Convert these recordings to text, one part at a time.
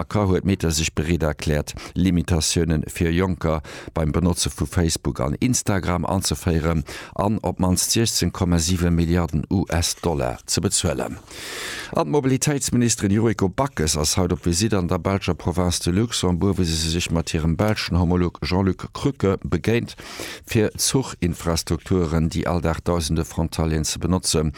A ka huet Meta sech bereet erkläert, Limitatioune fir Jonker beim Benotze vu Facebook an Instagram anzeféieren an op d'mannst 16, 7 Milliarden US-Dollar ze bezuelen. An d'Mobilitéitsministerin Yuriko Backes ass haut op Visitt an der belscher Province de Luxembourg, wou se sech mat hirem belschen Homolog Jean-Luc Krücke begéint. fir Zuchinfrastrukturen, déi all Dag dausende Frontalieren ze benotzen,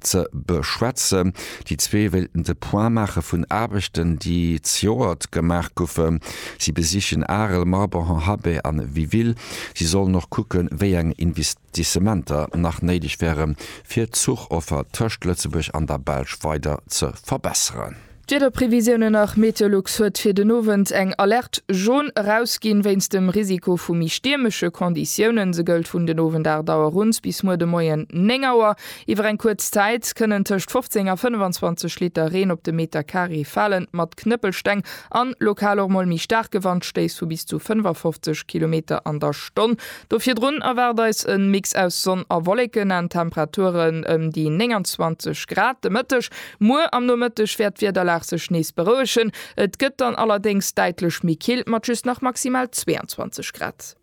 ze beschwätzen. Déi zwee wéilten de Point maache vun Aarbechten, déi zejoert gemaach goufen. Si besichen Arel, Morbihan, Habay an Wiville. Si sollen och kucken, wéi eng Investissementer nach néideg wären, fir d'Zuchoffer tëscht Lëtzebuerg an der Belsch weider ze verbesseren. D'Wiederprevisiounen nach, Meteolux huet fir den Owend eng Alerte Jaune erausginn, wéinst dem Risiko vu méi stiermesche Konditiounen. Se gëllt vun den Owend 8 Auer uns bis muer de Moien 9 Auer. Iwwer eng kuerz Zäit kënnen tëscht 15 a 25 Liter Reen op de Meter Carré falen, mat Knëppelsteng an lokal och mol méi staarke Wandstéiss vu bis zu 55 Kilometer an der Stonn. Do virdrun erwaart eis e Mix aus Sonn a Wolleken an Temperaturen ëm déi 29 Grad. De Mëtteg Muer am Nomëtteg wäert d'Wiederlag sech nees berouegen, et gëtt dann allerdéngs däitlech méi kill mat just nach maximal 22 Grad.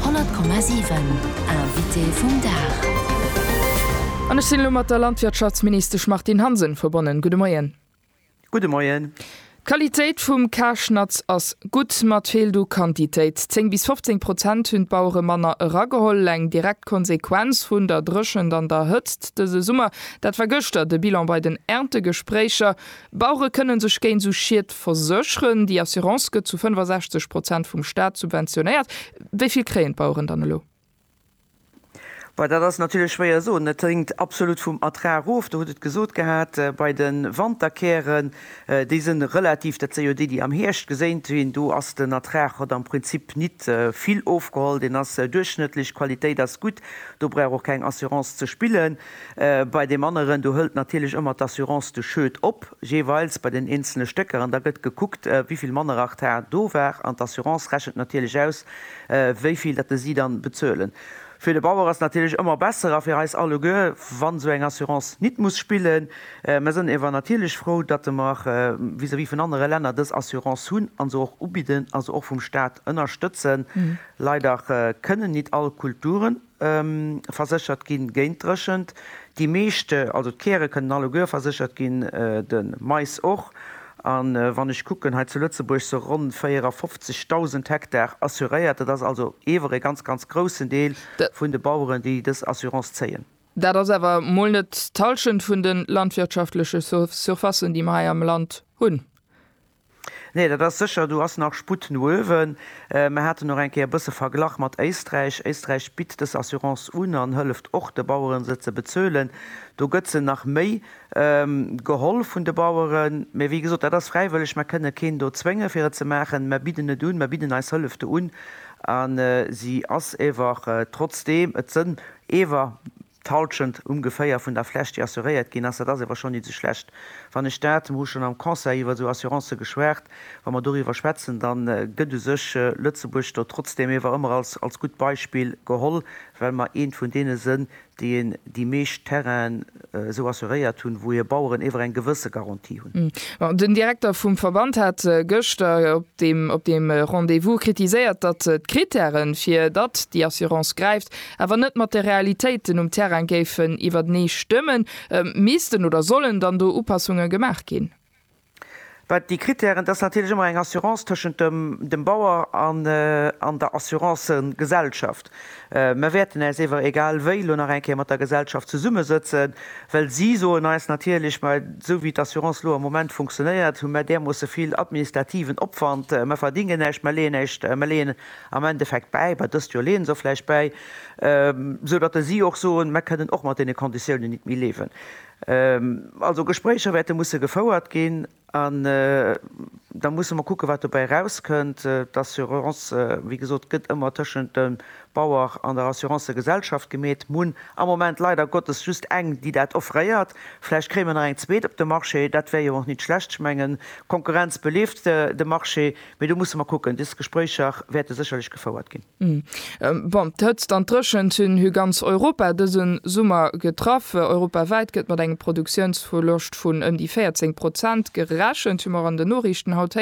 100,7 Invité vum Dag. An ech sinn elo mat der Landwirtschaftsministesch Martine Hansen verbonnen. Gudde Moien. Gudde Moien. D'Qualitéit vum Karschnatz ass gutt, ma 't feelt u Quantitéit. 10 bis 15 Prozent hunn d'Bauere manner erageholl. Eng direkt Konsequenz vun der Dréchent an der Hëtzt dëse Summer, dat war gëschter de Bilan bei den Erntegespréicher. Bauere kënne sech géint esou Schied versécheren. Déi Assurance gëtt zu 65 Prozent vum Staat subventionéiert. Wéi vill kréien d'Baueren dann elo? Well dat ass natierlech schwéier soen. Et hänkt absolut vum Ertrag of. Der hutt et gesot gehat, bei de Wanterkären, déi si relativ, dat si jo déi, déi am Hierscht geséint ginn, do ass den Ertrag, huet am Prinzip nit vill ofgeholl, deen ass duerchschnëttlech, d'Qualitéit ass gutt, do brauch och keng Assurance ze spillen. Bei deem aneren, do hëlt natierlech ëmmer d'Assurance de Schued op, jeeweils bei den eenzelne Stécker, an da gëtt gekuckt, wéi vill manner Ertrag do war, an d'Assurance rechent natierlech aus, wéi vill dat de si dann bezuelen. Fir de Bauer ass et natierlech ëmmer besser a fir eis alleguer, wann esou eng Assurance nit muss spillen. Mer sënn ewer natierlech frou, datte mer vis-à-vis vun anere Länner dës Assurance hunn a se och ubidden a se och vum Staat ënnerstëtzen. Leider kënnen nit all Kulturen. verséchert ginn géint Dréchent. Déi meeschte, also d'Käre kënnen alleguer verséchert ginn, de Mais och. A wann ech kucken, hei zu Lëtzebuerg sou ronn 54.000 Hektar assuréiert. Dat ass also ewer ee ganz, ganz groussen Deel vun de Baueren, déi dës Assurance zéien. Dat ass awer mol net d'Hallschent vun de landwirtschaftleche Surfacen, déi mer hei am Land hunn. Nee, dat ass sécher, do ass nach Sputt no uewen. Mer haten och eng Kéier e bësse verglach mat Éisträich. Éisträich bitt dës Assurance un an hëlleft och de Baueren, se ze bezuelen. Do gëtt se nach méi geholl vun de Baueren. Mee wéi gesot, dat ass fräiwëlleg. Mer kënne keen do zwénge fir et ze maachen. Mer bidden et un, mer bidden eis Hëllef do un a si ass ewer, trotzdeem et sënn ewer, D'Halschent ungeféier vun der Fläch déi assuréiert ginn ass, dat ass ewer schonn nit sou schlecht wann ech dat, mer hu schonn am Conseil iwwer sou Assurancen geschwat, wa mer doriwwer schwätzen, da gëtt u sech Lëtzebuerg do trotzdem ewer ëmmer als als gutt Beispill geholl, well mer eent vun deene sënn déi een déi meescht Terrainen esou assuréiert hunn, wou hir Baueren ewer eng gewësse Garantie hunn. Bon, den Direkter vum Verband hat gëschter op deem op deem Rendez-vous kritiséiert, datt d'Kritären fir datt déi Assurance gräift, awer net mat de Realitéiten um Terrain géifen iwwertenee stëmmen, missten oder sollen dann do Upassunge gemaach ginn? Wat déi Krittären, dat ass natierlech ëmmer eng Assurance tëschent dem Bauer an der Assurancegesellschaft. Mer wäerten äis ewer egal wéi elo nach eng Kéier mat der Gesellschaft zesummesëtzen, well si soen eis natierlech, mä esou wéi d'Assurance elo am Moment funktionéiert, hu mer därmoosse vill administrativen Opwand, mer verdingen näischt, mer leeën näischt, mer leeën am Endeffekt bäi, mä dëst Joer leeë se och vläicht bäi, esou datt ë si och soen, Mer kënnen och mat deene Konditiounen nit méi liewen. Also Gespréicher wäerte musse gefouert ginn an da musse mer kucke wat dobäi erauskënnt. D'Assurance, wéi gesot, gëtt ëmmer tëschent dem Bauer an der Assurancegesellschaft gemeet. Mer hunn am Moment leider Gottes just eng, déi dat offréiert. Vläicht kréie mer nach eng zweet op de Marché, dat wär jo och nit schlecht. Ech mengen, d'Konkurrenz beleeft de Marché. Mee do musse mer kucken. Des Gespréicher wäerte sécherlech gefouert ginn. Bon, d'Hëtzt an d'Dréchent hunn hu ganz Europa dëse Summer getraff. Europawäit gëtt mat engem Produktiounsverloscht vun ëm déi 14 Prozent gerechent, hu mer an den Noriichten haut héieren.